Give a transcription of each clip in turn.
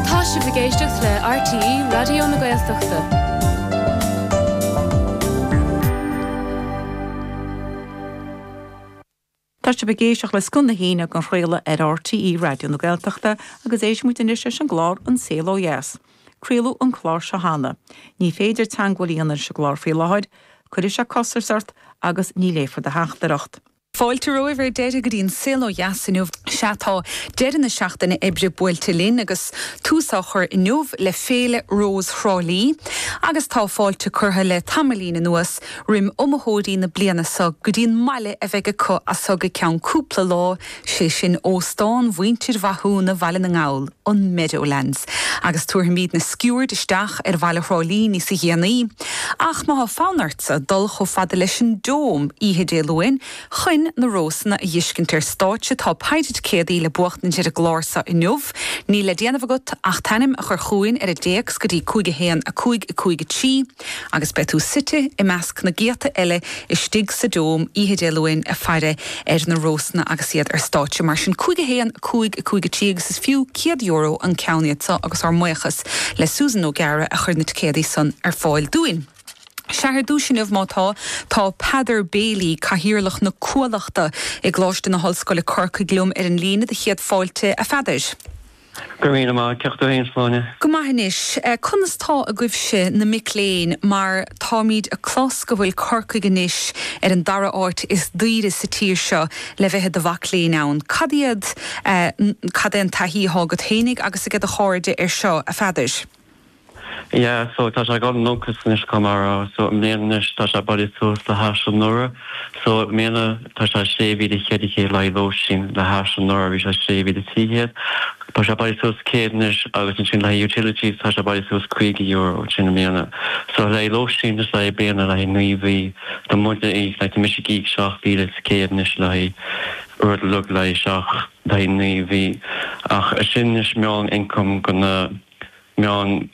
Tá sibh ag éisteacht le RTÉ Raidió na Gaeltachta. Tá sibh ag éisteacht le Scoth na hAoine dhá chraoladh ar RTÉ Raidió na Gaeltachta agus éistfidh muid anois leis an gclár An Saol Ó Dheas. Craoladh an clár seo cheana. Ní féidir teagmháil a dhéanamh leis an gclár faoi láthair. Cuirfidh sé costas ort agus ní léifear do theachtaireacht. Fáilte romhaibh ar deireadh go dtí an Saol Ó Dheas inniu. Sea, tá deireadh na seachtaine oibre buailte linn agus tús á chur inniu le Féile Rós Thrá Lí agus tá fáilte curtha le tamaillín anuas roim iomaitheoirí na bliana so go dtí an mbaile a bheidh acu as so go ceann cúpla lá, sé sin Óstán Mhuintir Mhathúna Bhaile na nGall, an Meadowlands. Agus tabharfaimídne sciuird isteach ar Bhaile Thrá Lí níosa dhéanaí. Ach má thá fonn ort. Dul chomh fada leis an Dome oíche Dé Luain chuin na rósanna a dh'fhiscint ar stáitse. Tá péire ticéadaí le buachtaint ar an gclár so inniu. Níl le déanamh agat ach t'ainm a chur chugainn ar an dtéacs go dtí 51553 agus beidh tú suite i measc na gcéadta eile istigh sa Dome oíche Dé Luain ag faire ar na rósanna agus iad ar stáitse. Mar sin 51553 agus is fiú €100 an ceann iad so agus ár mbuíochas le Susan O'Gara a chuir na ticéadaí san ar fáil dúinn. Sea, ar dtúis inniu, má tá. Tá Peadar Bailey, Cathaoirleach na Cuallachta i gColáiste na hOllscoile Corcaigh liom ar an líne. Do chéad fáilte, a Pheadair. Go raibh míle maith. Cén chaoi a bhfuil tú fhéin, Sláine? Go maith anois. Conas tá agaibhse, na mic léinn, mar táimid ag clos go bhfuil Corcaigh anois ar an dara áit is daoire sa tír seo le bheith i do mhac léinn ann. Cad iad nó cad é an taithí atá agat fhéinig agus age do chairde ar seo, a Pheadair? Yeah, so tá sé ag obair in Uncas anois atá mar rá, so i mbliana anois tá sé bailithe suas le hais anuraidh, so i mbliana tá sé sé mhíle cheithre chéad le haghaidh lóistín, le hais anuraidh bhí sé sé mhíle trí chéad, tá sé bailithe suas céad anois agus ansin le haghaidh utilities tá sé bailithe suas caoga euro, sin i mbliana. So le haghaidh lóistín just le haghaidh bliana le haghaidh naoi mhí do muidne í like tá mise ag íoc seacht míle is céad anois le haghaidh rud a lug le haghaidh seach, le haghaidh naoi mhí ach sin anois meán income go na, meán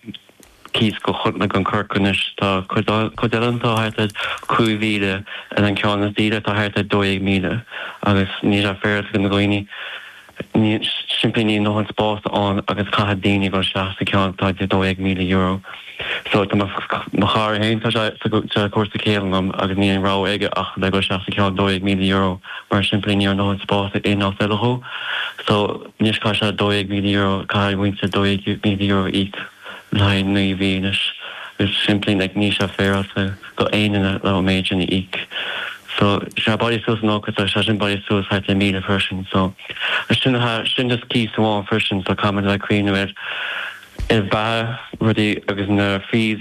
cíos go coitianta i gCorcaigh anois. Tá cuid eile atá thart ar chúig mhíle ar an ceann is daoire atá thart ar dó dhéag míle agus níl sé féaráilte ar dhaoine. Simplí níl dóthain spása ann agus caithfidh daoine dhul isteach sa cheann atá dó dhéag míle euro. So tá mo chara fhéin tá sé sa chúrsa céanna liom agus níl aon rogha aige ach le dhul isteach sa cheann dó dhéag míle euro mar simplí níl dóthain spása aon áit eile dhó. So. Anois tá sé €12,000, caithfidh muintir €12,000 a íoc le haghaidh naoi mhí anois agus simplí níl sé féaráilte do aon duine le an méid sin a íoc. So sea, b'fhéidir suas an ócáid agus sé sin b'fhéidir suas thart ar míle freisin. So sin atá, sin just cíos amháin freisin so caithfimid a bheith ag cuimhniú ar beatha rudaí agus na fees.